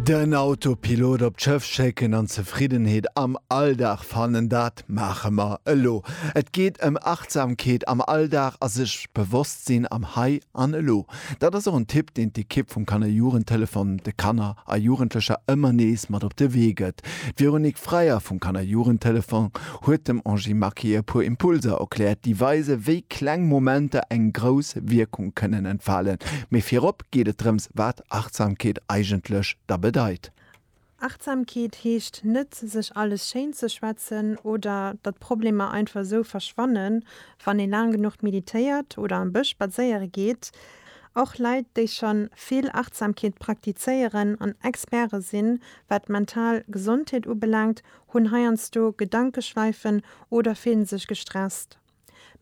Den Autopilot op d'Schëff schécken an Zefriddenheet am Alldag fannen, dat maache mer elo. Et geet ëm Achtsamkeet am Alldag a sech bewosst sinn am Hei an Elo. Dat ass och en Tipp, deen d'Ekipp vum Kanner-Jugendtelefon de Kanner a Jugendlecher ëmmer nees mat op de Wee gëtt. D'Véronique Freyer vum Kanner-Jugendtelefon huet dem Angie Marquet e puer Impulser erkläert, déi weisen, wéi kleng Momenter eng grouss Wierkung kënnen entfalen. Mee virop geet et drëms, wat Achtsamkeet eigentlech da bedeit. Achtsamkeet heescht net, sech alles schéin ze schwätzen oder datt Problemer einfach esou verschwannen, wann ee laang genuch meditéiert oder am Bësch spadséiere geet. Och Leit, déi scho vill Achtsamkeet praktizéieren an Experte sinn, wat d'mental Gesondheet ubelaangt, hunn heiansdo Gedankeschleifen oder fillen sech gestresst.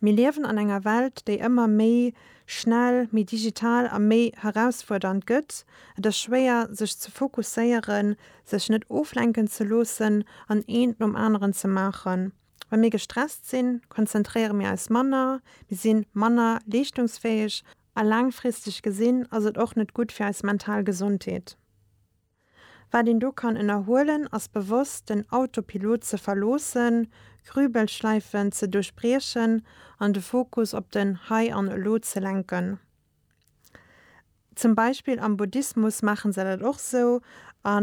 Mir liewen an enger Welt, déi ëmmer méi schnell, méi digital a méi herausfuerdernd gëtt. Et ass schwéier, sech ze fokusséieren, sech net oflenken ze loossen an eent nom aneren ze maachen. Wa mir gestresst sinn, konzentréiere mir eis manner, mir si manner leeschtungsfäeg a laangfristeg gesinn ass et och net gutt fir eis mental Gesondheet. Wat een do kann ënnerhuelen, ass bewosst den Autopilot ze verloossen, Grübelschleifen ze duerchbriechen an de Fokus op den Hei an Elo ze lenken. Zum Beispill am Buddhismus maache se dat och sou a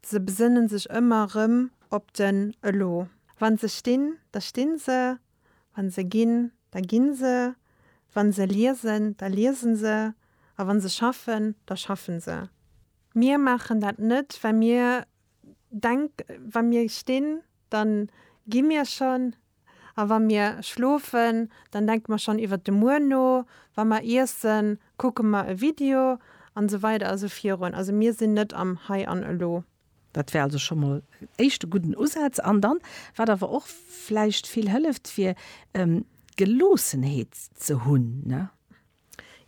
se besënne sech ëmmer erëm op den Elo. Wa se stinn, da stinn se. Wa se ginn, da gi se, wa se liesen, da liese se a wa se schaffen, da schaffe se. Mir maachen dat net, well mir denk, wa mir stinn, da gi mir schonn, a wa mir schlofen, da denke mer schonn iwwer de Muer no, wa mer iessen, kucke mer e Video an esou weider a sou virun. Also mir sinn net am Hei an Elo. Dat wär also scho mol en éischte gudden Usaz. An dann, wat awer och vläicht vill hëlleft, wier Geloossenheet ze hunn.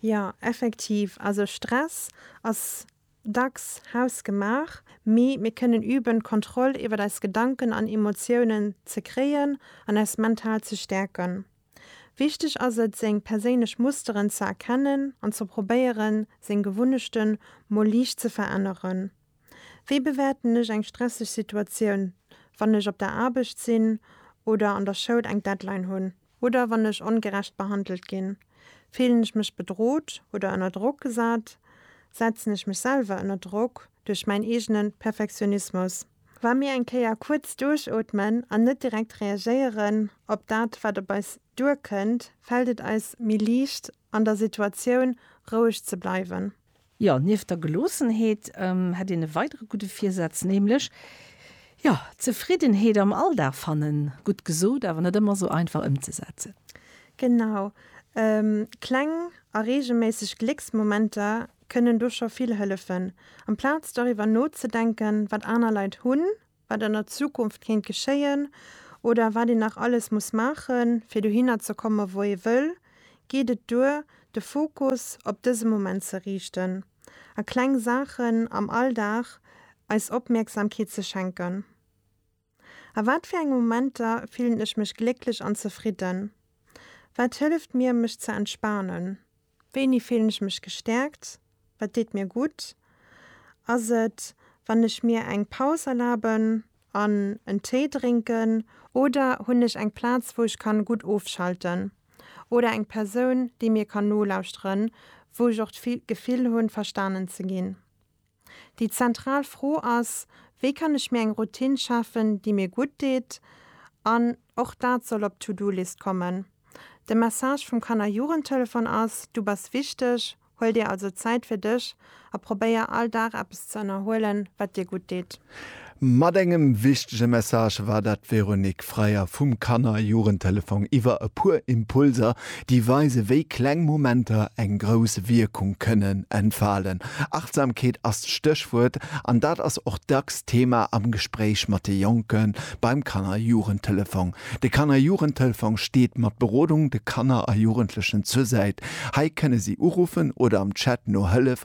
Jo, effektiv. Also Stress ass dacks hausgemaach, mee mir kënnen üben, d'Kontroll iwwer eis Gedanken an Emotiounen ze kréien an eis mental ze stäerken. Wichteg ass et, seng perséinlech Musteren ze erkennen an ze probéieren, seng Gewunnechte mol liicht ze veränneren. Wéi bewäerten ech eng stresseg Situatioun, wann ech op der Aarbecht sinn oder an der Schoul eng Deadline hunn? Oder wann ech ongerecht behandelt ginn? Fillen ech mech bedrot oder ënner Drock gesat? Setzen ech mech selwer ënner Drock duerch mäin eegene Perfektionismus? Wa mir eng Kéier kuerz duerchootmen an net direkt reagéieren op dat, wat op eis duerkënnt, fält et eis méi liicht, an der Situatioun roueg ze bleiwen. Jo, nieft der Geloossenheet hätt een e weidere gudde Virsaz, nämlech, jo, Zefriddenheet am Alldag fannen. Gutt gesot, awer net ëmmer esou einfach ëmzesetzen. Genau. Kleng a reegelméisseg Glécksmomenter kënnen do scho vill hëllefen. Amplaz doriwwer nozedenken, wat aner Leit hunn, wat an der Zukunft kéint geschéien oder wat een nach alles muss maache fir dohinner ze komme wou ee wëll, geet et duer de Fokus op dëse Moment ze riichten a kleng Saachen am Alldag eis Opmierksamkeet ze schenken. A wat fir enge Momenter fillen ech mech glécklech an zefridden? Wat hëlleft mir mech ze entspanen? Wéini fillen ech mech gestärkt? Wat deet mir gutt? Ass et, wann ech mir eng Paus erlaben an en Téi drénken? Oder hunn ech eng Plaz, wou ech kann gutt ofschalten? Oder eng Persoun, déi mir kann nolauschteren, wou ech och d'Gefill hunn, verstanen ze ginn? Déi zentral Fro ass, Wéi kann ech mir eng Routine schafen, déi mir gutt deet? An och dat soll op d'To-Do-List kommen. De Message vum Kanner-Jugendtelefon ass, Du bass wichteg, huel dir also Zäit fir dech a probéier all Dag eppes ze ënnerhuelen, wat dir gutt deet. Mat engem wichtege Message war dat d'Véronique Freier vum Kanner a Jugendtelefong iwwer e puer Impulser, déi weise wéi kleng Momenter eng grouss Wierkung kënnen entfalen. Achtsamkeet ass d'Stéchwuert an dat ass och dacks Thema am Gespréich mat de Jonke beim Kanner a Jugendtelefong. De Kanner a Jugendtelefong steet mat Berodung de Kanner a Jugendlechen zur Säit. Hei kënne si uruffen oder am Chat no Hëllef